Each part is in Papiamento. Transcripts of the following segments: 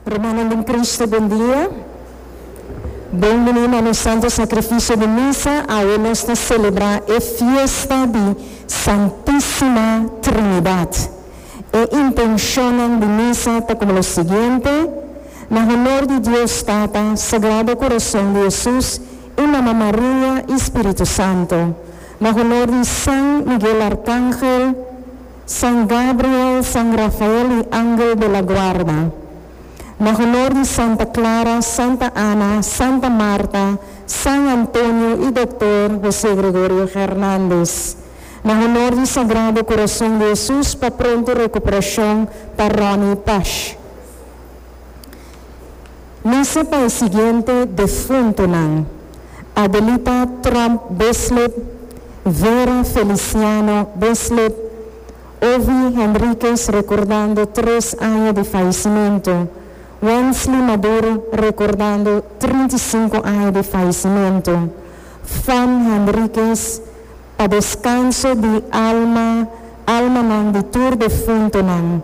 Rumannan den Cristo, bon dia. Bon bini na nos Santo Sacrificio di Misa, awe nos ta celebra e fiesta di Santisima Trinidad. E intencionnan di Misa ta como lo siguiente, Na honor di Dios Tata, Sagrado Corazon di Jesus y Mama Maria y Spiritu Santo. Na honor di San Miguel Arcangel. San Gabriel, San Rafael y Angel de la Guarda. Na honor di Santa Clara, Santa Ana, Santa Marta, San Antonio y Doctor Jose Gregorio Hernandez. Na honor di Sagrado Corazon di Jesus pa pronto recuperacion pa Ronnie Pash. Mester pa e siguiente defuntonan, Adelita Tromp Bislip, Vera Feliciano Bislip, Ovi Henriquez rekordando tres aña di fayesimento, Wensley Maduro rekordando trinta i sinku aña di fayesimento, Fon Henriquez, pa deskanso di alma almanan di tur defuntonan.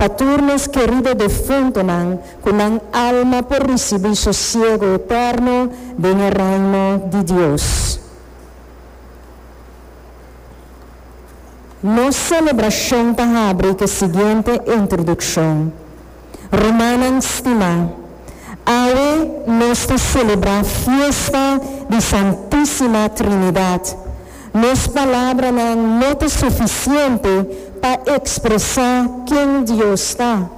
Pa tur nos kerido defuntonan, ku nan alma por risibí sosiego eterno den e Reino di Dios. Nos selebrashon ta habri ku e siguiente introdukshon, Rumannan stimá, awe nos ta selebrá fiesta di Santísima Trinidat. Nos palabranan no ta sufisiente pa ekspresá ken Dios ta.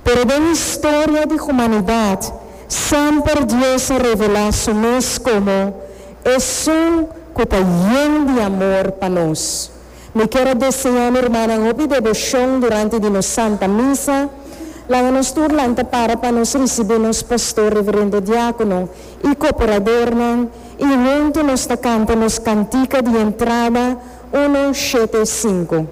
Pero den historia di humanidat, semper Dios a revelá Su mes komo Esun ku ta yen di amor pa nos. Mi kier a deseá mi rumannan hopi devoshon durante di nos Santa Misa. Laga nos tur lanta para pa nos risibí nos pastor, reverendo diákono. i kooperadornan i huntu nos ta kanta nos kantika di entrada uno shete sinku.